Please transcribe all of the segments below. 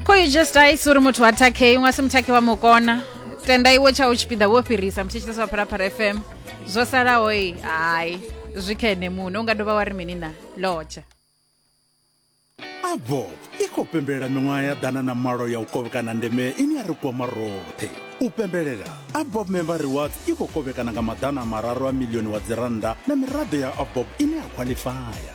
khoijustais uri muthu wa takhei unga si muthakhe wa mukona tenda iwe tsha u tshipiḓa wo fhirisa mutshitshitsa wa pharapara fm zwo salaho i hai zwi kha ene muṋe u nga dovha wa ri mini na lotsha abo i khou pembelela miṅwaha ya ḓana na malo ya u kovhekana ndeme ine ya ri kwama roṱhe u pembelela abob member rewards i khou kovhekana nga maḓana mararu a milioni wa dzirannda na miraḓo ya abob ine ya khwaḽifaya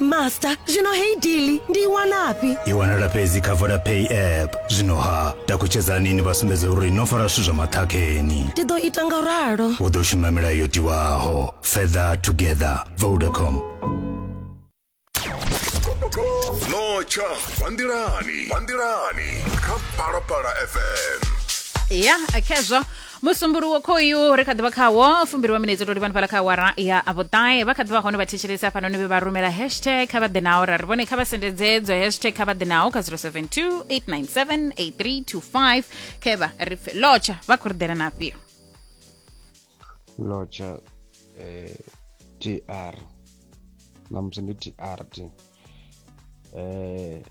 master zwino heyi dili ndi i wanafhi i wanala fhedzi kha vodapay app zwino ha takutshedzani ni vha sumbedze uri no fara zwithu zwa maṱhakheni ndi ḓo ita nga ralo u ḓo shuma milayo yo tiwaho further together vodacom notsha vanḓilani vanḓilani kha phalaphala fm ya khezwo musumbuluwo khoyu ri kha ḓi vha khawo fumbiriwa minetse to livhani fhala kha awara ya vhuṱae vha kha ḓi vha hone vha thetshelesa hafhanoni vhe vha rumela hashtag kha vha ḓe nao ra ri vhone kha vha sendedze dzo hashtag kha vha ḓe nao kha 072 897 8325 khevha ri pfe lotsha vha khou ri ḓela na afhio lotsha eh, tr namusi ndi trt eh,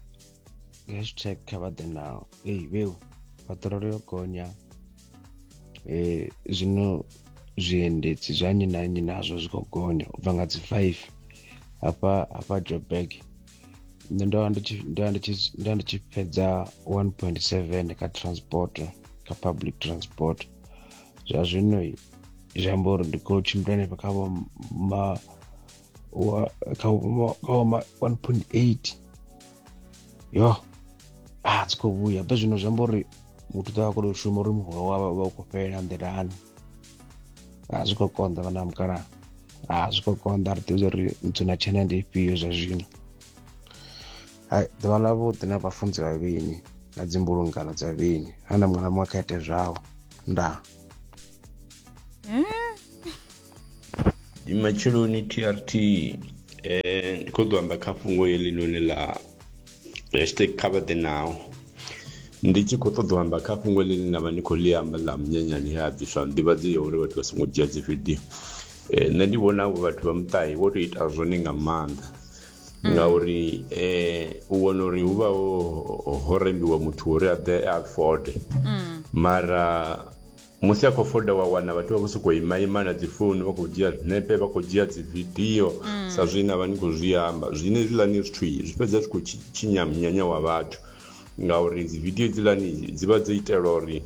hashtag kha vha ḓe nao ei vheu paṱirolo yo gonya eh, zwino zwiendedzi zwa nnyi na nnyi nazwo zwi khou gonya u bva nga dzi five hafha hafha joburg nṋe ndo vha ndi tshi fhedza one point seven kha transport kha public transport zwa zwino zwi amba uri ndi khou tshimbila henefha kha vho ma wa kha wa- kha wa ma- 1.8 yo a dzi khou vhuya ḓo zwino zwi amba uri muthu ḓo vha khou tou shuma uri muholo wawe vha u khou fhelela nḓilani a zwi khou konḓa vhana vha mukalaha a zwi khou konḓa ri ḓivha uri nthu na tshena ndi ifhio zwa zwino hai ḓuvha ḽa vhuḓi na vhafunzi vha vhini na dzimbulungano dza vhini ha na muṅwe na muṅwe kha ite zwawe ndaa ndi matsheloni trt eh ndi khou ḓo amba kha fhungo heḽinoni ḽa hashtag cover the now ndi tshi khou ṱoḓa u amba kha fhungo ḽine nda vha ndi khou ḽi amba ḽa munyanyani he a bviswa nḓivhadzo ya uri vhathu vha songo dzhia dzi video eh nṋe ndi vhona avho vhathu vha muṱahi vho tou ita zwone nga maanḓa ngauri eh u wana uri hu vha ho ho rembiwa muthu uri a ḓe a fode mara Musi a khou foda wa wana vhathu vha vho sokou imaima na dzi founu vha khou dzhia zwinepe vha khou dzhia dzi vidio sa zwine na vha ni khou zwi amba zwine hezwiḽani zwithu zwi fhedza zwi khou tshinya munyanya wa vhathu ngauri dzi vidio hedzilani dzi vha dzo itelwa uri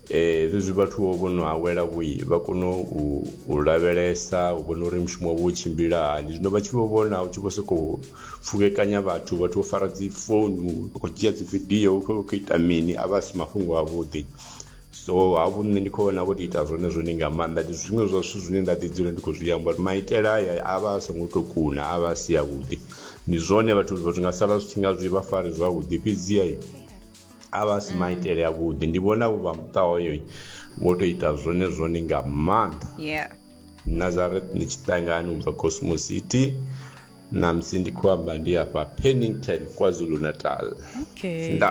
eh zwezwi vhathu vho vho no awela vho vha kone u lavhelesa u vhona uri mushumo wavho u tshimbila hani zwino vha tshi vho vhona u tshi vho sokou pfukekanya vhathu vhathu vho fara dzi founu vha khou dzhia dzi vidio vha khou ita mini a vha si mafhungo a vhuḓi so hafhu nṋe ndi khou vhona vho tou ita zwone zwone nga maanḓa ndi zwiṅwe zwa zwithu zwine nda ḓi dzula ndi khou zwi amba uri maitele aya a vha a songo tou kuna a vha a si avhuḓi ndi zwone vhathu vhathu nga sala zwi tshi nga zwi vha fari zwavhuḓi fhedziha a vha a si maitele avhuḓi ndi vhona vho vha muṱa hoyo vho tou ita zwone zwone nga maanḓa yeah nazareth ndi tshiṱangani u bva cosmo city namusi ndi khou amba ndi afha pennington kwazulu natal okay nda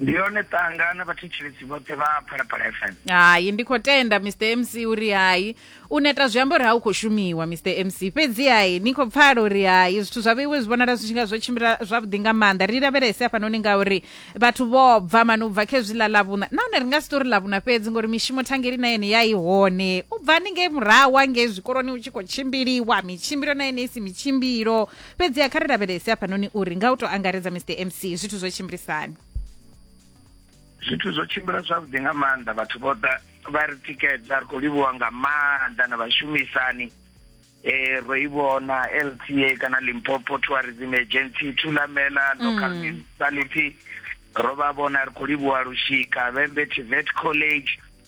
ndi yone ṱanga na vhathetshelesi vhoṱhe vha phalaphala fm hai ndi khou tenda mr mc uri hai u neta zwi amba uri ha u khou shumiwa mr mc fhedzi hai ni khou pfala uri hai zwithu zwa vheiwe zwi vhonala zwi tshi nga zwo tshimbila zwavhuḓi nga maanḓa ri lavhelese hafhanoni ngauri vhathu vho bva mani u bva kha hezwi ḽa ḽavhuṋa nahone ri nga si tori ḽavhuṋa fhedzi ngori mishumo thangeli na yene ya i hone u bva ni ngei murahu hangei zwikoloni u tshi khou tshimbiliwa mitshimbilo na yene i si mitshimbilo fhedziha kha ri lavhelese hafhanoni uri nga u tou angaredza mr mc zwithu zwo tshimbilisani zwithu zwo tshimbila zwavhuḓi nga maanḓa vhathu vho ḓa vha ri tikedza ri khou livhuwa nga maanḓa na vhashumisani eh ro i vhona LTA kana Limpopo Tourism Agency Thulamela mm. Local Municipality ro vha vhona ri khou livhuwa lushika Vhembe Tivet College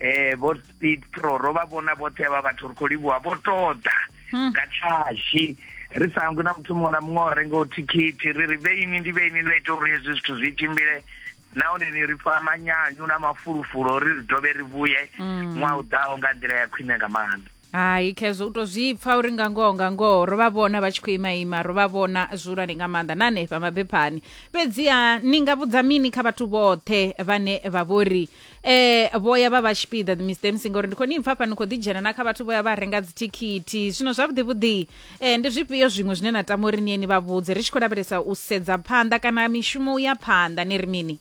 eh vho speed pro ro vha vhona vhoṱhe vha vhathu ri khou livhuwa vho toḓa hmm. nga tshashi ri sa hangwi na muthu muṅwe na muṅwe o rengaho thikhithi ri ri vheini ndi vheini ḽo ita uri hezwi zwithu zwi tshimbile nahone ni ri pfa manyanyu na mafulufulu ri ri dovhe ri vhuye hmm. ṅwaha u ḓaho nga nḓila ya khwine nga maanḓa hai khezwo u to zwi pfa uri nga ngoho nga ngoho ro vha vhona vha tshi khou ima ima ro vha vhona zwihulwane nga maanḓa na hanefha mabephani fhedziha ni nga vhudza mini kha vhathu vhoṱhe vhane vha vhori eh vhoya vha vha tshipiḓa mr mc ngori ndi khou ni pfa fha ni khou ḓidzhena na kha vhathu vhoya vha renga dzithikhithi zwino zwavhuḓi vhuḓi eh ndi zwifhio zwiṅwe zwine na tama uri niye ni vha vhudze ri tshi khou lavhelesa u sedza phanḓa kana mishumo u ya phanḓa ni ri mini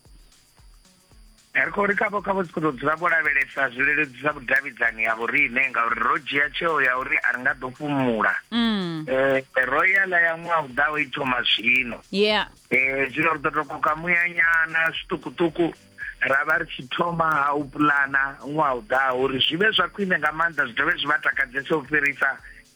ri khou ri khavho khavho si khou tou dzula vho lavhelesa zwi leludzisa vhudavhidzani ha vhoriṋe ngauri ro dzhia tsheo ya uri a ri nga ḓo fhumula um ro ya ḽa ya ṅwaha u ḓaho i thoma zwino yeah um zwino ri ḓo tou koka muyanyana zwiṱukuṱuku ra vha ri tshi thoma ha u pulana ṅwaha u ḓaho uri zwi vhe zwa khwine nga maanḓa zwi dovhe zwi vha takadzese u fhirisa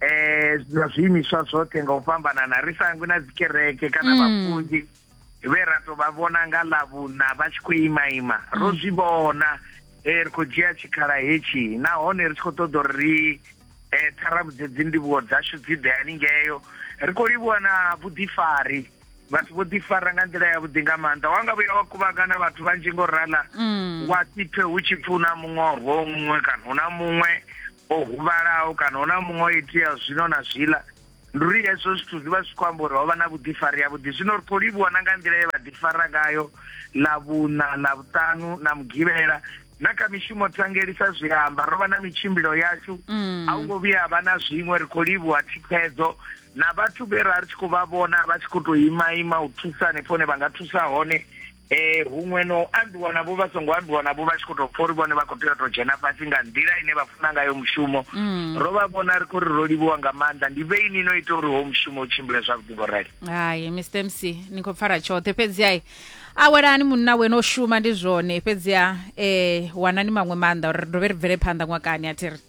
eh na zwiimiswa zwoṱhe nga u fhambanana ri sangwi na dzikereke kana mm. vhafunzi vhe ra to vha vhona nga ḽavhuna vha tshi khou imaima ro mm. zwi vhona eh, ri khou dzhia tshikhala hetshi nahone ri tshi khou ṱoḓa uri ri eh, ṱharavhudze dzindivhuwo dzashu dzi ḓe haningeyo ri khou livhuwa na vhuḓifari vhathu vho ḓifara nga nḓila yavhuḓi nga maanḓa wa nga vhuya wa kuvhangana vhathu vhanzhi ngo rala mm. wa sipfe hu tshi pfi hu na muṅwe o muṅwe kana hu na muṅwe o huvhalaho kana hu na muṅwe o itea zwino na zwiḽa ndi uri hezwo zwithu zwi vha zwi khou amba uri ho vha na vhuḓifari yavhuḓi zwino ri khou livhuwa na nga nḓila ye vha ḓifara ngayo ḽa vhuṋa ḽa vhuṱanu na mugivhela na kha mishumo tsangelisa zwi amba ro vha na mitshimbilo yashu mm. a hu ngo vhuya vha na zwiṅwe ri khou livhuwa thikhedzo na vhathu vhe ra ri tshi khou vha vhona vha tshi khou tou ima ima u thusa hanefho hone vha nga thusa hone eh huṅwe no ambiwa navho vha songo ambiwa navho vha tshi khou tou pfa uri vhone vha khou tea u tou dzhena fhasi nga nḓila ine vha funa ngayo mushumo mm. ro vha vhona ri khou ri ro livhiwa nga maanḓa ndi vhe ini no ita uri ho mushumo u tshimbile zwavhuḓi vho rali hai mr mc ni khou pfara tshoṱhe fhedzi ai a welani munna wena o shuma ndi zwone fhedziha um eh, wanani maṅwe maanḓa uri ri dovhe ri bvele phanḓa ṅwakani a thi ri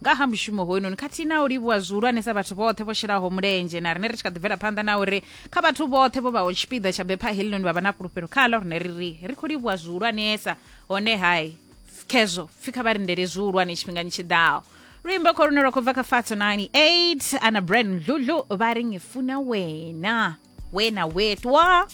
nga ha mushumo hoyunoni khathihi na u livhuwa zwihulwanesa vhathu vhoṱhe vho shelaho mulenzhe na rine ri tshi kha ḓi bvela phanḓa na uri kha vhathu vhoṱhe vho vhaho tshipiḓa tsha bepha helinoni vha vha na fhulufhelo khalo rine ri ri ri khou livhuwa zwihulwanesa hone hai khezwo pfi kha vha lindele zwihulwane tshifhingani tshi ḓaho luimbo kho lune lwa khou bva kha fato 98 ana brand mdludlu vha ri ngifuna wena wena wetwa